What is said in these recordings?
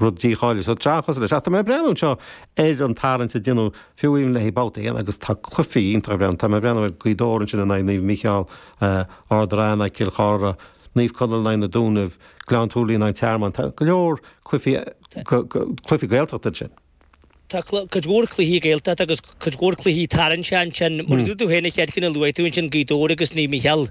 Rud dícháiliú sa tseachas leis, ach tá mé ag breathnú anseo ar an tarraingt a deineadh faoi choinne babhta a haon agus tá cluifí iontacha ag breathnú. Tá mé ag breathnú ar Gaoth Dobhair ansin in aghaidh Naomh Mícheál, Ard an Rátha in aghaidh Cill Chartha, Naomh Conaill in aghaidh na Dúnaibh, Gleann tSúilí in aghaidh Tearmann. Tá go leor cluifí, cluifí Gaeltachta ansin. Tá cuid mhór cluichí Gaeltachta agus cuid mhór cluichí tarraingteach ansin. Mar a dúirt tú féin an chéad cheann a luaigh tú ansin, Gaoth Dobhair agus Naomh Micheál,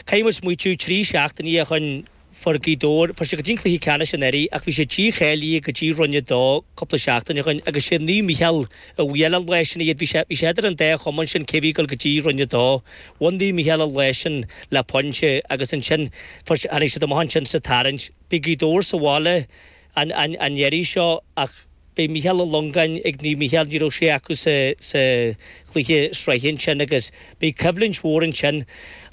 caithfidh muid smaoitiú trí seachtainí ó shin fuair Gaoth Dobhair, fuair siad go dtí an cluiche ceannais anuraidh ach bhí siad dícháilithe go dtí Roinn 2 cúpla seachtain ó shin agus sé Naomh Micheál a bhuail an lá sin iad. Bhí sé, bhí sé idir an dá chumann sin cé bhí ag dul go dtí Roinn 2. Bhain Naomh Micheál an lá sin le pointe agus ansin fuair siad, tháinig siad amach ansin sa tarraingt. Bhí Gaoth Dobhair sa bhaile. an iarraidh seo ach beidh Michael Langan ag Naomh Mícheál, ní raibh sé acu sa chluiche sraithe ansin agus beidh coimhlint mhór ansin.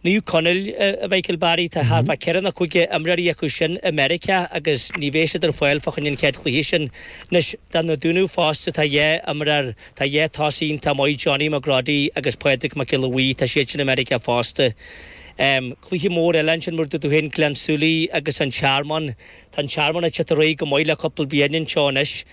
Naomh Conaill, a Mháire Treasa, tá thart fá ceithre nó cúige imreoirí acu sin i Meiriceá agus ní bheidh siad ar fáil fá choinne an chéad chluiche sin. Anois, na Dúnaibh fosta, tá dhá imreoir, tá dhá tosaí iontach maith, Johnny McGroddy agus Pádraig Mac Giolla Bhríde, tá siad sin i Meiriceá fosta. Cluiche mór eile ansin mar a dúirt tú féin, Gleann tSúilí agus An Tearmann. Tá An Tearmann ag tabhairt air go maith le cúpla bliain anuas anseo anois.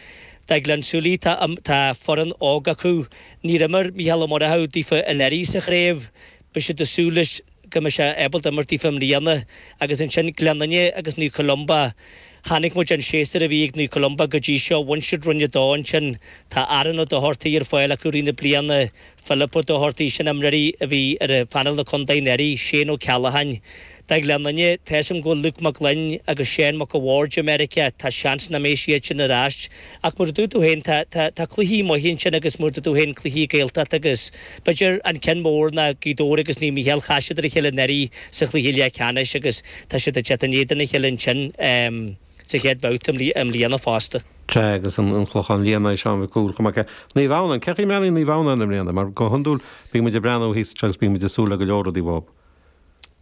Gleann tSúilí tá tá foireann óg acu. Níor imir Mícheál Ó Murchú daofa anuraidh sa chraobh. Beidh siad ag súil leis go mbeidh sé ábalta imirt daofa i mbliana. Agus ansin Gleann Fhinne agus Naomh Columba. Chonaic muid an séasúr a bhí ag Naomh Columba go dtí seo, bhain siad Roinn 2 ansin. Tá Aaron Ó Dochartaigh ar fáil acu i rith na bliana. Philip Ó Dochartaigh, sin imreoirí a bhí ar phainéal an Chontae anuraidh, Shane Ó Ceallacháin. Gleann Fhinne, tá a fhios agam go bhfuil Luke Mac Gloinn agus Seán Mac a' Bhaird i Meiriceá, tá seans nach mbeidh siad sin ar ais. Ach mar a dúirt tú féin, tá, tá, tá cluichí maithe ansin agus mar a dúirt tú féin cluichí Gaeltachta agus, b'fhéidir, an ceann mór ná Gaoth Dobhair agus Naomh Micheál, chas siad ar a chéile anuraidh sa chluiche leathcheannais agus tá siad ag teacht in éadan a chéile ansin. sa chéad bhabhta i mbliana fosta. Sea, agus an Clochán Liath in aghaidh Sheáin Mhic Cumhaill chomh maith le Naomh Adhamhnán. Cén chaoi a mbeidh Naomh Adhamhnán i mbliana? Mar go hiondúil bíonn muid ag breathnú orthusan agus bíonn muid ag súil le go leor rudaí uathu.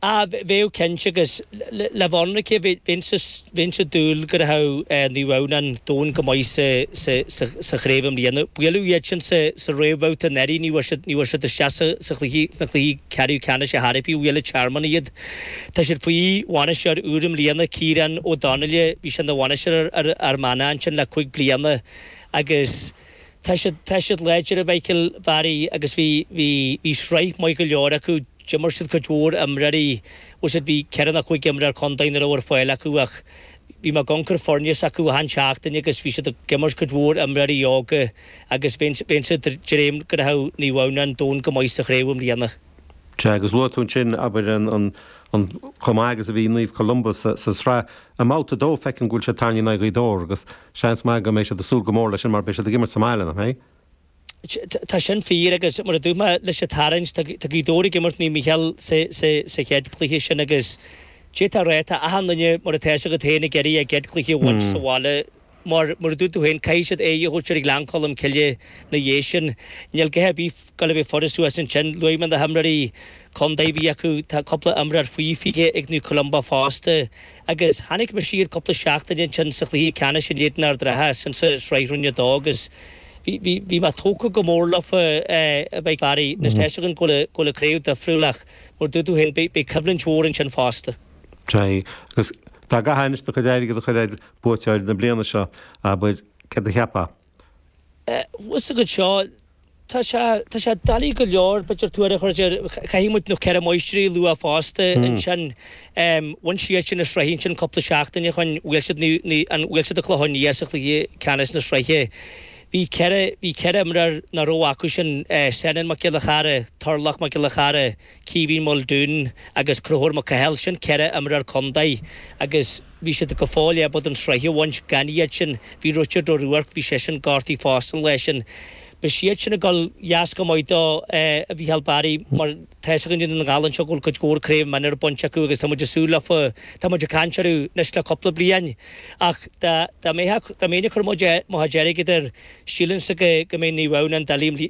Á, bheadh cinnte, agus leoga. Bheinnse ag dúil go rachaidh Naomh Adhamhnán domhain go maith sa chraobh i mbliana. Buaileadh iad sin sa réamhbhabhta anuraidh, ní bhfuair siad isteach sna cluichí ceathrú ceannais a thairbhe gur bhuail An Tearmann iad. Tá siad faoi bhainisteoir úr i mbliana, Ciarán Ó Donnaile. Bhí sé ina bhainisteoir ar Fhear Manach ansin le cúpla bliain agus tá siad, tá siad láidir, a Mháire Treasa agus bhí, bhí, bhí sraith maith go leor acu. D'imir siad cuid mhór imreoirí, bhuel siad, bhí ceithre nó cúig imreoir contae nach raibh ar fáil acu ach bhí mé ag amharc ar foirne s'acu achan seachtain agus bhí siad ag imirt cuid mhór imreoirí óga agus bheinn, bheinnse ag dréim go rachadh Naomh Adhamhnáin domhain go maith sa chraobh i mbliana. Sea, agus luaigh tú ansin, abair, an chomh maith agus a bhí Naomh Columba sa tsraith. I mbabhta a dó, feicim go bhfuil siad tarraingthe in aghaidh Ghaoth Dobhair agus seans maith go mbeidh siad ag súil go mór leis sin mar beidh siad ag imirt sa mbaile, nach mbeidh? Tá sin fíor agus, mar a dúirt mé leis an tarraingt, tá Gaoth Dobhair ag imirt Naomh Mícheál sa chéad chluiche sin agus d'fhéadfá a rá, tá achan duine, mar atá fhios agat féin, ag iarraidh a gcéad chluiche a bhaint sa bhaile. mar, mar a dúirt tú féin, caithfidh siad aghaidh a thabhairt ar Ghleann Cholm Cille 'na dhiaidh sin. Níl a dhath ar bith ag goil a bheith furast thuas ansin. Luaigh mé na himreoirí contae a bhí acu. Tá cúpla imreoir faoi 20 ag Naomh Columba fosta. Agus chonaic mé iad cúpla seachtain ó shin sa chluiche ceannais in éadan Ard an Rátha san sa Sraith Roinn 2 agus bhí, bhí, bhí mé tógtha go mór leofa, a Mhichíl Barry. Anois, tá a fhios agam go bhfuil a, go bhfuil an chraobh difriúil ach mar a dúirt tú féin, beidh, beidh coimhlint mhór ansin fosta. Sea. Agus dá gcaithfeása do chuid airgead a chur ar Buaiteoir na bliana seo, abair, céard a cheapfá? Bhuel, sa gcuid seo, tá sé, tá sé doiligh go leor, b'fhéidir, tuar a chur air. Caithfidh muid na Ceithre Máistrí a lua fosta ansin. Bhain siad sin an tsraith ansin cúpla seachtain ó shin, bhuail siad na, na, an, bhuail siad an Clochán Liath sa chluiche ceannais na sraithe. Bhí ceithre, bhí ceithre imreoir nach raibh acu sin, Seanán Mac Giolla Chearra, Torlach Mac Giolla Chearra, Caoimhín Muldoon agus Conchúr Mac Cathail, sin ceithre imreoir contae agus, bhí siad go fóill ábalta an tsraith a bhaint gan iad sin. Bhí Richard Ó Ruairc, bhí seisean gortaithe fosta an lá sin. Beidh siad sin ag goil deas go maith dó, a Mhichíl Barry mar tá's againn i nDún na nGall anseo go bhfuil cuid mhór Craobh Minor bainte acu agus tá muid ag súil leofa tá muid ag caint orthu anois le cúpla bliain ach dá mbeadh dá mbeinn ag cur mo mo chuid airgid air sílimse go mbeidh Naomh Adhamhnáin doiligh